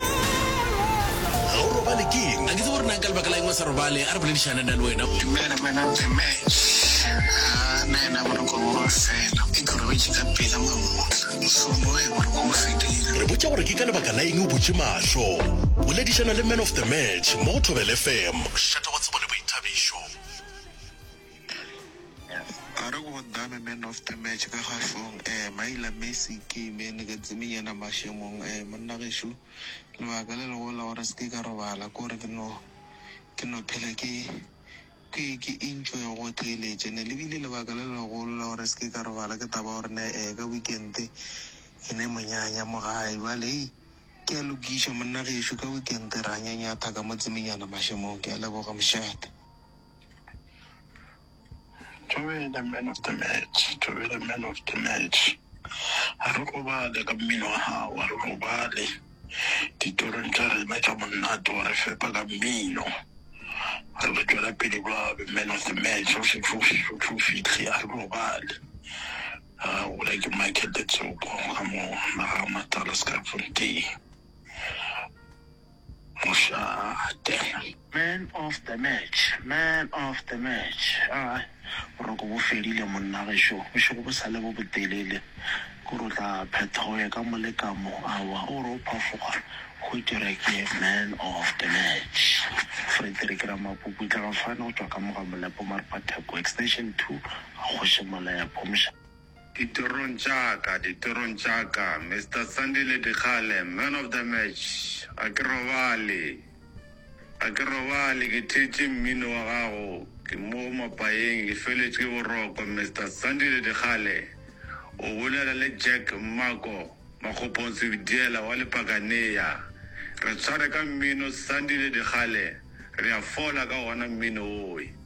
Ga o robale ke eng? A ke tsebe gore nang ka lebaka la eng o sa robale. A re boledišane nna le wena. Dumela Mmanang Tseme. Haa na yena boroko bo ba fela. E ke o robetše ka pela mamotla. Mohlomong ge boroko bo fedile. Re botša gore ke ka lebaka la eng o butše mahlo. Boledišana le Man of the Match mo go Thobela FM. Šetha go tsebo le boithabišo. A re go dame man of the match ka kgahlong eh Maila Messi ke imene ka tsemeng yena mašemong eh monna gešo lebaka le lego la gore seke ka robala ke gore ke no ke no phela ke ke ke enjoy go theeletše ne le bile lebaka le legolo la gore seke ka robala ke taba gore ne eh ka weekend e ne monyanya mo gae bale hei ke a lokiša monna gešo ka weekend ra nyanyatha ka mo tsemeng yena mašemong ke a leboga mošate. To be the man of the match, to be the man of the match. A re robale ka mmino wa gago, a re robale ditorong tša rena tša monate wa re fepa ka mmino. Re be tšwela pele ba be man of the match, o šetše o šetše o tlo fihle, a re robale. A gola ke Michael Letsopa ka mo Naga Matala Skyfontein. Man of the match, man of the match aa boroko bo fedile monna gešo, bošego bo sale bo botelele ko re o tla phetha o ye ka mo le ka mo, aowa o re o phafoga hwetše re ke man of the match. Frederick Ramapupu o itlega fano go tšwa ka mo ga Molepo Marpa Theko, Extension two, Kgoši Molepo. Ditorong tša ka, ditorong tša ka, Mister Sandile Dikgale, man of the match, ga ke robale, ga ke robale, ke theetše mmino wa gago, ke mo go mapayeng, ke feletše ke boroko, Mister Sandile Dikgale, o bolela le Jack Mmako Makgopong Sebidiela wa Lepakanea, re tshware ka mmino, Sandile Dikgale, re a fola ka wona mmino woe.